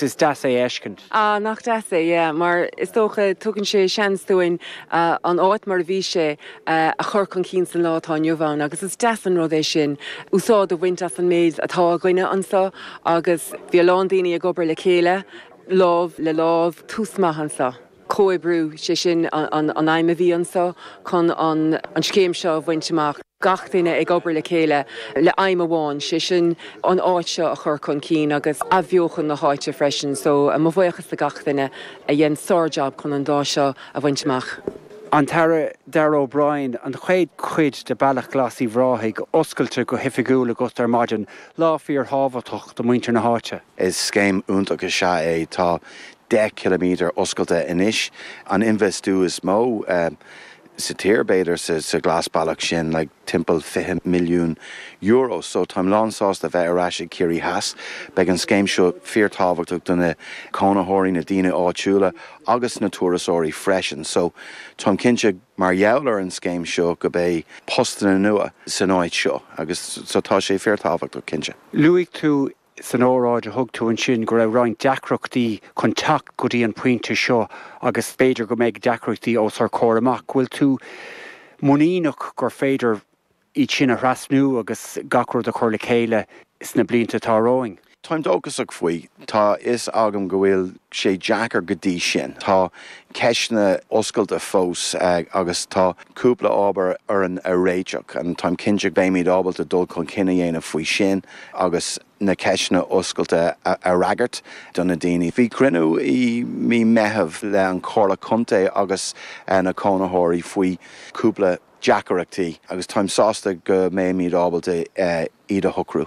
Is deas é a fheiscint. Ah, nach deas é, yeah, mar is dócha tugann sé seans dúinn an áit mar a bhí sé a chur chun cinn san lá atá inniu ann agus is deas an rud é sin, úsáid a bhaint as an méid atá againne anso agus bhí a lán daoine ag obair le chéile, lámh le lámh, tús maith anso. comhoibriú, sé sin an aidhm a bhí annso chun an scéim seo a bhaint amach, gach duine ag obair le chéile le aidhm amháin, sé sin an áit seo a chur chun cinn agus athbheochan na háite freisin. So mo bhuíochas le gach duine a dhein sár-jab chun an lá seo a bhaint amach. An tAire Darragh O'Brien, An chéad cuid de Bealach Glas Uíbh Ráthaigh oscailte go hoifigiúil agat ar maidin, lá fíor-thábhachtach do muintir na háite. Is scéim iontach sea é. Tá 10 km oscailte anois, an infheistiú is mó sa tír b'fhéidir sa ghlasbhealach sin, le timpeall €20 milliún, so táim lán sásta bheith ar ais i gCiarraí Theas. Beidh an scéim seo fíor tábhachtach do na cónaitheoirí, na daoine áitiúla agus na turasóirí freisin, so táim cinnte mar gheall ar an scéim seo go beidh postanna nua san áit seo agus so tá sé fíor tábhachtach cinnte. Luaigh tú san óráid a thug tú ansin go raibh roinnt deacrachtaí chun teacht go dtí an pointe seo agus b'fhéidir go mbeidh deacrachtaí os ár gcomhair amach. Bhfuil tú muiníneach gur féidir iad sin a thrasnú agus gach rud a chur le chéile sna blianta atá romhainn? Táim dóchasach faoi. Tá a fhios agam go bhfuil sé deacair go dtí sin. Tá ceisteanna oscailte fós agus tá cúpla ábhar orainn a réiteach. Táim cinnte go mbeimid ábalta dul chun cinn a dhéanamh faoi sin. agus na ceisteanna oscailte a fhreagairt do na daoine. Bhí cruinniú i mí Meitheamh le an Chomhairle Contae agus na cónaitheoirí faoi cúpla deacaireachtaí agus táim sásta go mbeimíd ábalta iad a shocrú.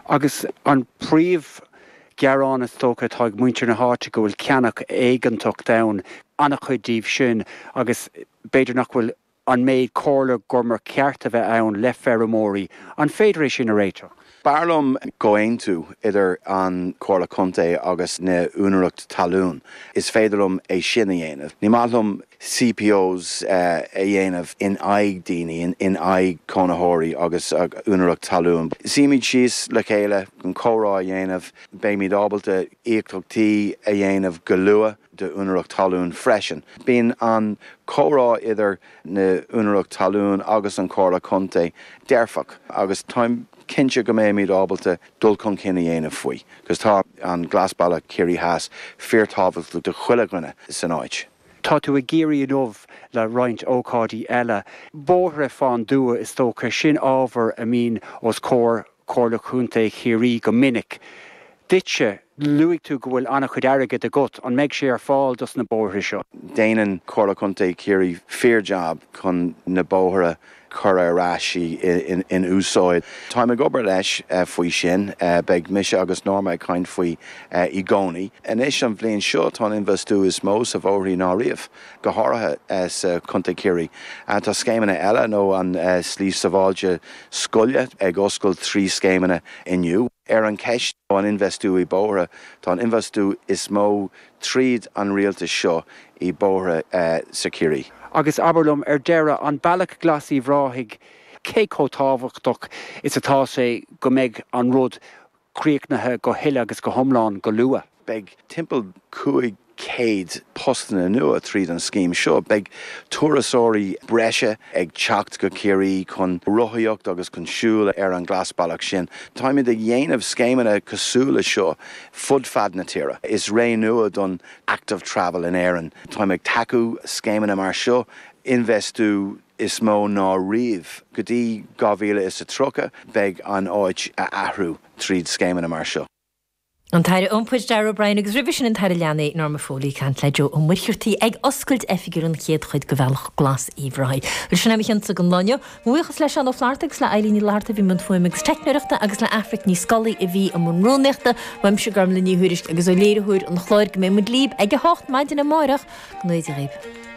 Agus an príomhghearán is dócha atá ag muintir na háite go bhfuil ceannach éigeantach déanta, an-chuid díobh sin agus b'fhéidir nach bhfuil An méid comhairle gur cheart a bheith ann le feirmeoirí? An féidir é sin a réiteach? B'fhearr liom comhaontú idir an Comhairle Contae agus na úinéireacht talún. Is féidir liom é sin a dhéanamh. Ní maith liom CPOs a dhéanamh in aghaidh daoine, in aghaidh cónaitheoirí agus úinéireacht talún. Suímid síos le chéile chun comhrá a dhéanamh. Beimid ábalta íocaíochtaí a dhéanamh go luath. d'úinéireacht talún freisin. Bíonn an comhrá idir na úinéireacht talún agus an Comhairle Contae dearfach agus táim cinnte go mbeimíd ábalta dul chun cinn a dhéanamh faoi agus tá an Glasbhealach Chiarraí Theas fíor tábhachtach do chuile dhuine san áit. Tá tú i gCiarraí inniu le roinnt ócáidí eile. Bóithre fán dtuath is dócha, sin ábhar a mbíonn os comhair Comhairle Chontae Chiarraí go minic. Duitse, luaigh tú go bhfuil an-chuid airgid agat, an mbeidh sé ar fáil dos na bóithre seo? Déanann Comhairle Chontae Chiarraí fíor jab chun na bóithre a chur ar ais in úsáid. Táim ag obair leis faoi sin. Beidh mise agus Norma ag caint faoi i gcónaí. Anois an bhliain seo tá an infheistiú is mó sa bhóithre ná riamh. go háirithe sa Chontae Chiarraí. Tá scéimeanna eile nó an Slí Sabháilte Scoile ag oscailt trí scéimeanna inniu. Ar an cheist ó an infheistiú i bóithre, tá an infheistiú is mó tríd an rialtas seo i bóithre sa Chiarraí. Agus abair liom ar deireadh, an Bealach Glas Uíbh Ráthaigh, cé chomh tábhachtach is atá sé go mbeidh an rud críochnaithe go huile agus go hiomlán go luath. Beidh timpeall 500 postanna nua tríd an scéim seo. Beidh turasóirí breise ag teacht go Ciarraí chun rothaíocht agus chun siúl ar an glasbhealach sin. Táimid ag dhéanamh scéimeanna cosúil leis seo fud fad na tíre. Is ré nua don Active Travel in Éirinn. Táimid ag tacú scéimeanna mar seo, infheistiú is mó ná riamh. Go dtí dhá mhíle is a tríocha beidh an áit a athrú tríd scéimeanna mar seo. An tAire Iompair, Darragh O'Brien, agus roimhe sin an tAire Leanaí, Norma Foley, ag caint le Joe Ó Muircheartaigh ag oscailt oifigiúil an chéad chuid de Bhealach Glas Uíbh Ráthaigh. Bhuel, sin é ó Adhmhaidin don lá inniu. Mo bhuíochas le Seán Ó Flatharta agus le Eileen Ní Fhlatharta a bhí i mbun fuaime agus teicneoireachta agus le Aifric Ní Scolaí a bhí i mbun rúnaíochta. Uaimse, Gormlaith Ní Thuairisg, agus ó léiritheoir an chláir, go mbeidh muid libh ag a hocht maidin amárach. Go ngnóthaí Dia dhaoibh.